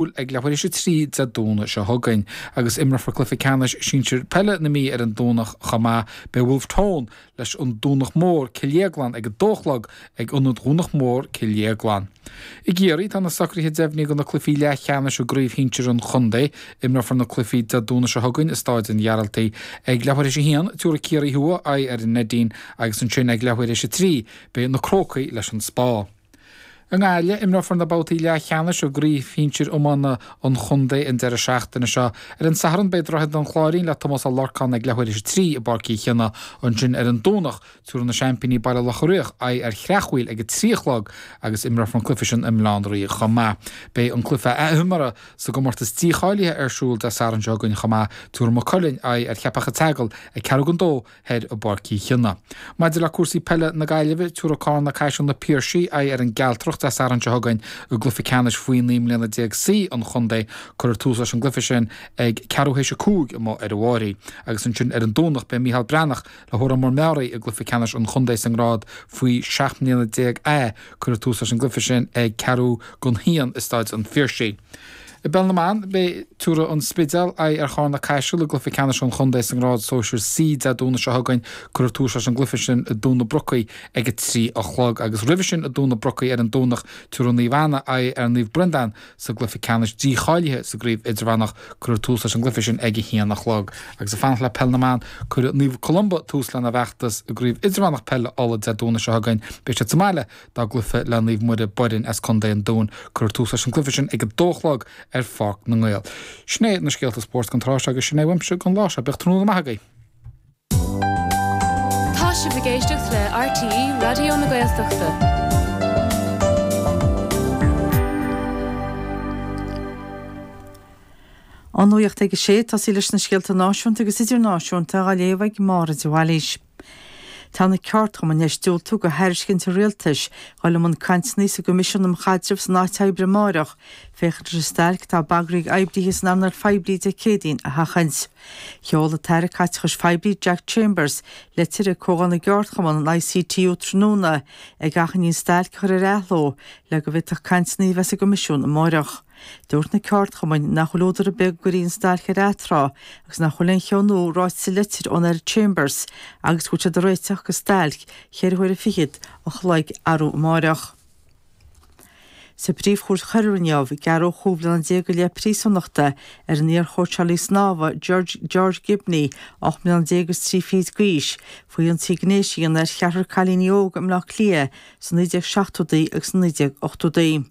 siúl ag leathuair théis a trí Dé Domhnaigh seo chugainn. Agus imreofar cluiche ceannais sinsir peile na Mí ar an Domhnach chomh maith, beidh Bhulf Tón leis an Domhnach Mór, Cill Dhéagláin ag a dó a chlog ag Ionad Dhomhnach Mór, Cill Dhéagláin. I gCiarraí, tá na socruithe deimhnithe do na cluichí leathcheannais i gcraobh shinsir an chontae. Imreofar na cluichí Dé Domhnaigh seo chugainn i Stáid an Ghearaltaigh. Ag leathuair théis a haon, tiúrfaidh Ciarraí Thuaidh aghaidh ar an Neidín agus ansin ag leathuair théis a trí, beidh Na Crócaigh leis an Spá. I nGaillimh, imreofar na babhtaí leathcheannais i gcraobh shinsir iomána an chontae an deireadh seachtaine seo. Ar an Satharn beidh Droichead an Chláirín le Tomás Ó Lorcáin ag leathuair théis a trí i bPáirc Uí Chionnaith. Ansin ar an Domhnach tabharfaidh na seaimpíní Baile Locha Riach aghaidh ar Chreachmhaoil ag a trí a chlog agus imreofar an cluiche sin i mBaile Átha an Rí chomh maith. Beidh an cluiche athimeartha sa gcomórtas dícháilithe ar siúl Dé Sathairn seo chugainn chomh maith. Tabharfaidh Maigh Cuilinn aghaidh ar Cheapach a' tSeagail ag ceathrú don dó thoir i bPáirc Uí Chionnaith. Maidir le cúrsaí peile na Gaillimhe, tiúrfaidh Cárna Caiseal Na Piarsaigh aghaidh ar an gCealtrach Dé Sathairn seo chugainn i gcluiche ceannais faoi naoi mbliana déag C an Chontae. Cuirfear tús leis an gcluiche sin ag ceathrú théis a cúig amuigh ar an Bháirí agus ansin ar an Domhnach beidh Micheál Breathnach le hÓrán Mór Meáraí i gcluiche ceannais an chontae sa ngrád faoi seacht mbliana déag A cuirfear tús leis an gcluiche sin ag ceathrú don haon i Staid an Phiarsaigh. I bpeil na mban, beidh tiúrfaidh An Spidéal aghaidh ar Chárna Caiseal i gcluiche ceannais an chontae sa ngrád sóisir C Dé Domhnaigh seo chugainn. Cuirfear tús leis an gcluiche sin i dTóin na Brocaí ag a trí a chlog agus roimhe sin i dTóin na Brocaí ar an Domhnach tiúrfaidh Naomh Anna aghaidh ar Naomh Breandán sa gcluiche ceannais dícháilithe sa gcraobh idirmheánach. Cuirfear tús leis an gcluiche sin ag a haon a chlog. Agus ag fanacht le peil na mban, cuirfidh Naomh Columba tús lena bhfeachtas i gcraobh idirmheánach peile Uladh Dé Domhnaigh seo chugainn. Beidh siad sa mbaile dá gcluiche le Naomh Muire, Boirinn as Co. an Dúin. Cuirfear tús leis an gcluiche sin ag a dó a chlog ar Pháirc na nGael. Sin é na scéalta spóirt don tráth seo agus sin é uaimse don lá seo. Bíodh tráthnóna maith agaibh. Tá sibh ag éisteacht le RTÉ Raidió na Gaeltachta. An nuacht ag a sé, tosaí leis na scéalta náisiúnta agus idirnáisiúnta á léamh ag Máire de Bhailís. Tá na ceardchumainn théis diúltú do thairiscint an Rialtais dul i mbun cainteanna sa gCoimisiún um Chaidreamh san Áit Oibre amáireach féachaint leis an stailc atá bagraithe ag oibrithe san earnáil phoiblí Dé Céadaoin a sheachaint. Sheol an tAire Caiteachais Phoiblí Jack Chambers litir ag Comhdháil na gCeardchumann an ICTU tráthnóna ag achainí an stailc a chur ar athló le go bhféadfadh cainteanna a bheith sa gCoimisiún amáireach. Dúirt na ceardchumainn nach bhfuil údar ar bith go gcuirfí an stailc ar atráth agus nach bhfuil aon cheo nua ráite sa litir ón Aire Chambers agus go bhfuil siad ag réiteach do stailc cheithre huaire fichead a chloig arú amáireach. Sa bPríomh-Chúirt Choiriúil inniu gearradh chúig bhliana déag go leith príosúnachta ar an iar-chóitseálaí snámha George Gibney, ocht mbliana déag is trí fichid d'aois, faoi ionsaí gnéis a dhéanamh ar cheathrar cailíní óga i mBleá Cliath sna 1970idí agus sna 1980idí.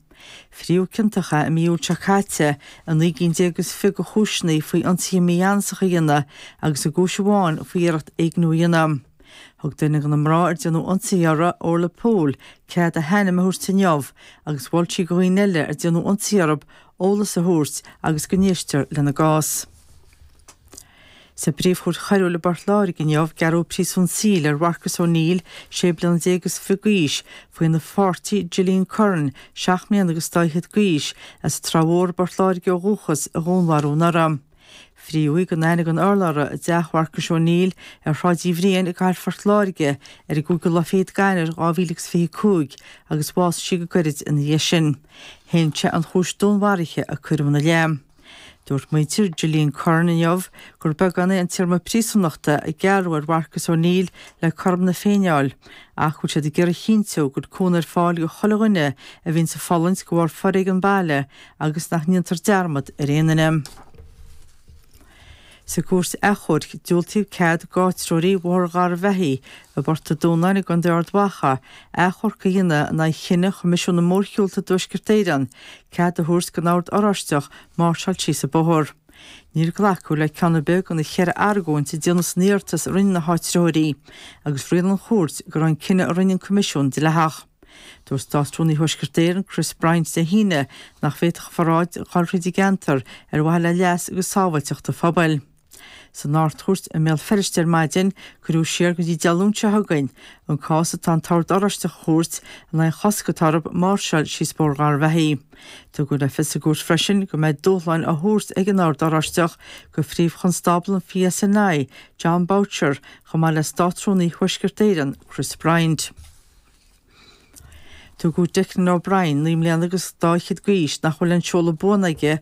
Frítheadh ciontach é i mí Iúil seo caite i naoi gcinn déag agus fiche de chúiseanna faoi ionsaithe mígheanasacha a dhéanamh agus i gcúis amháin faoi iarracht éigniú a dhéanamh. Thug duine de na mná ar déanadh ionsaí orthu, Orla Poole, cead a hainm a thabhairt inniu agus mhol sí do dhaoine eile ar déanadh ionsaí orthu eolas a thabhairt agus go n-éistear lena gcás. Sa bPríomhchúirt Choiriúil i bPort Láirge inniu gearradh príosún saoil ar Mharcus Ó Neill, sé bliana déag is fiche d'aois, faoina pháirtí Gillian Curran, seacht mbliana agus dá fhichead d'aois, as an Trá Mhór i bPort Láirge ó dhúchas, a dhúnmharú anuraidh. Frítheadh í gan aithne gan urlabhra i dteach Mharcuis Ó Neill ar Shráid Uí Bhriain i gcathair Phort Láirge ar an gcúigiú lá fichead d'Eanáir dhá mhíle agus fiche cúig agus bhásaigh sí go gairid ina dhiaidh sin. Shéan sé an chúis dúnmharaithe a cuireadh ina leith. Dúirt muintir Gillian Curran inniu gur beagán é an téarma príosúnachta a gearradh ar Mharcus O'Neill le cothrom na Féinne a fháil ach go bhfuil siad ag iarraidh a chinntiú go bhfuil cúnamh ar fáil do chuile dhuine a bhíonns ag fulaingt de bharr foréigean baile agus nach ndéantar dearmad ar aon duine. Sa gCúirt Achomhairc, diúltaíodh cead d'áitritheoirí Bhóthar Gharbhachaidh i bPort a' Dúnáin i gContae Ard Mhacha achomharc a dhéanamh in aghaidh chinneadh Choimisiún na Mórshiúlta i dTuaisceart Éireann cead a thabhairt don Ord Oráisteach máirseáil síos an bóthar. Níor glacadh le ceann ar bith de na ceithre argóint a déanadh san iarratas a rinne na háitritheoirí, agus rialaigh an chúirt go raibh an cinneadh a rinne an Coimisiún dleathach. Dúirt Státrúnaí Thuaisceart Éireann Chris Bryant Dé hAoine nach bhféadfadh an pharáid dhul thríd an gceantar ar mhaithe le leas agus sábháilteacht an phobail. San Ard-Chúirt i mBéal Feirste ar maidin cuireadh siar go dtí Dé Luain seo chugainn an cás atá an tOrd Oráisteach a thabhairt in aghaidh an chosc atá orthu máirseáil síos Bóthar Gharbhachaidh. Tugadh le fios sa gcúirt freisin go mbeidh dúshlán á thabhairt ag an Ord Oráisteach do Phríomh-Chonstábla an PSNI, Jon Boutcher, chomh maith le Státrúnaí Thuaisceart Éireann Chris Bryant. Tugadh Declan O'Brien, naoi mbliana agus dá fhichead d'aois, nach bhfuil aon seoladh buan aige